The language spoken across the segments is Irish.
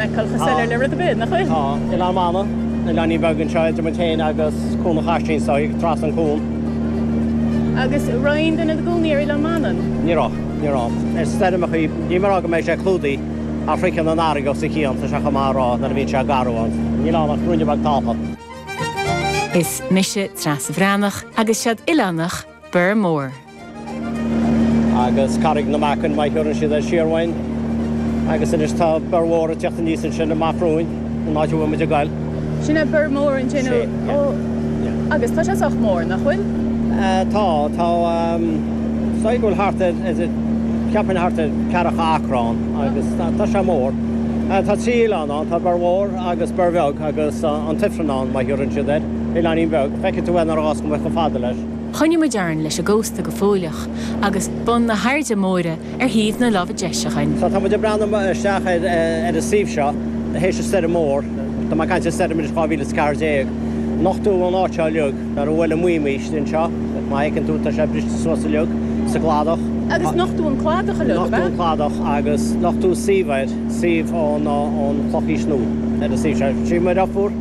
Calctha soiléir le rud ar bith, nach bhfuil? Tá. In amanna, an oileáinín beag anseo idir muid féin agus Cuan an Chaisín so, ag dul trasna an cuan. Agus raibh duine ina gcónaí ar Oileán Mana? Ní raibh. Ní raibh. Is stoirmeacha iad. Ní maith rá go mbeidh sé clúdaithe ach sroicheann an fharraige os a chionn, tá sé chomh maith a rá, nuair a bhíonn sé garbh ann. Níl ann ach ruainne beag talúna. Is mise Treasa Bhreathnach agus seod oileánach. Bior Mór. agus Carraig na Meacan mar a thugann siad air siar uainn agus anois tá Bior Mhór ag tíocht aníos ansin amach romhainn, an áit a bhfuil muid ag goil. Sin é Bior Mór ansin? Sea, yeah. Ó, yeah. Agus tá sé sách mór, nach bhfuil? Eh, tá, tá, ehm, sílim go bhfuil thart ar- is it- ceapaim thart ar ceathracha acra ann agus tá tá sé mór. Eh, Tá trí oileán ann, tá Bior Mhór agus Bior Bheag agus eh, an Tifreann ann mar a thugann siad air, oileáinín bheag. Feicfidh tú é ar an mbás go mbeadh go fada leis. Choinnigh muid orainn leis an gcósta go fóilleach agus bun na hAirde Móire ar thaobh na láimhe deis againn. Tá muid ag breathnú isteach ar an suíomh seo th'éis an stoirm mhór. Tá mé ag caint ar stoirm anois 2014. Nochtadh an áit seo uilig. Nuair a bhuail an maidhm isteach anseo, má fheiceann tú, tá sé briste suas uilig sa gcladach. Agus nochtadh an cladach uilig, ab ea? Nochtadh an cladach agus nochtadh suíomh ann, suíomh ón Chlochaois Nua ar an suíomh seo. Suíomh Muir Iofúr.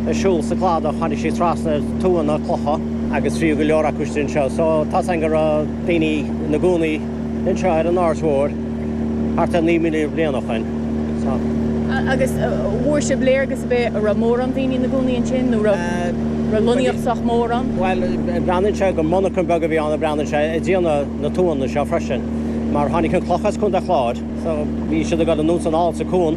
ag siúl sa chladach, tháinig sí trasna ar tuanna cloiche agus bhí go leor acu istigh anseo. So, tá a fhios againn go raibh daoine ina gcónaí anseo ar an Aird Mhóir thart ar 9,000 bliain ó shoin. So. Agus an bhfuair sibh léargas ar bith, a' raibh mórán daoine ina gcónaí ansin nó raibh raibh lonnaíocht sách mór ann? Bhuel, breathnaíonn sé gur monarchan beag a bhí ann, breathnaíonn sé, ag déanamh na tuanna seo freisin mar tháinig an cloch as Contae Chláir so bhí siad ag dul anuas ar fáil sa cuan.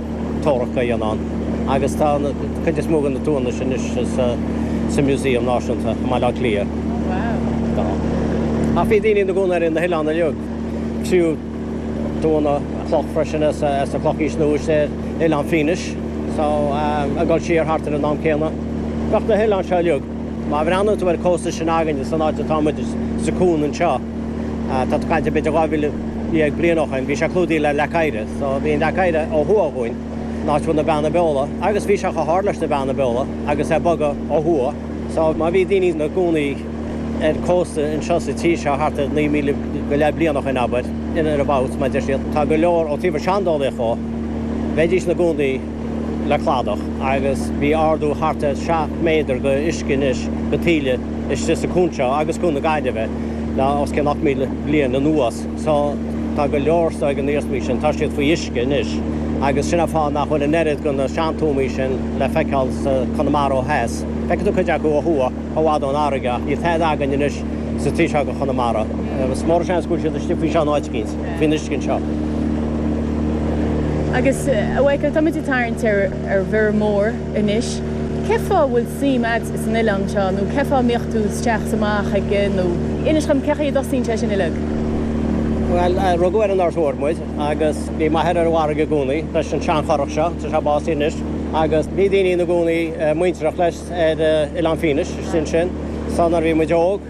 Tua a dhéanamh agus tá an cuid is mó de na tuanna sin anois sa Museum Náisiúnta i mBaile Átha Cliath. Tá. Ach bhí daoine ina gcónaí ar na hoileáin uilig. Fríothadh tuanna cloch freisin as an Chlochaois Nua ar Oileán Fínis. So ag goil siar thart ar an am céanna. Bheadh na hoileáin seo uilig. Má bhreathnaíonn tú ar an cósta seo againne, san áit atá muid, sa cuan anseo, Tá tú ag caint b'fhéidir 12,000 bliain ó shoin. Bhí sé clúdaithe le leac oighre. So bhí an leac oighre ó thuaidh uainn, an áit a bhfuil na Beanna Beola. Agus bhí sé chomh hard leis na Beanna Beola agus é ag bogadh ó thuaidh. So má bhí daoine ina gcónaí ar cósta anseo sa tír seo thart ar 9,000 go leith bliain ó shoin, abair, in or abouts, mar a deir siad, tá go leor ó thaobh an seandálaíocht dhó, bheidís ina gcónaí. le cladach agus bhí ardú thart ar seacht méadar go uisce anois go taoille istigh sa cuan seo agus cuan na Gaillimhe le os cionn 8000 bliain anuas so tá go leor de na hiarsmaí sin tá siad faoi uisce anois agus sin an fáth nach bhfuil an oiread go na seantuamaí sin le feiceáil i gConamara ó dheas. Feicfidh tú cuid acu ó thuaidh chomh fhad ón fharraige ach níl tada againn anois sa taobh seo go Chonamara. Is mór an seans go bhfuil siad istigh faoi sin áit eicínt. faoin uisce anseo. Agus, a Mhaidhcil, táimid ag tarraingt ar mhuir mhóir anois. Cé fáth a bhfuil suim a'd san oileán seo nó cé fáth a mbíodh tú isteach 's amach aige nó inis dhom cé chaoi a dtosaíonn sin uileag? Bhuel, rugadh ar an North Shore muid agus bhí m'athair ar an bhfarraige i gcónaí leis an sean-churach seo, tá sé básaithe anois, agus bhí daoine ina gcónaí muintearach leis ar Oileán Fínis, sin sin, so nuair a bhí muid óg,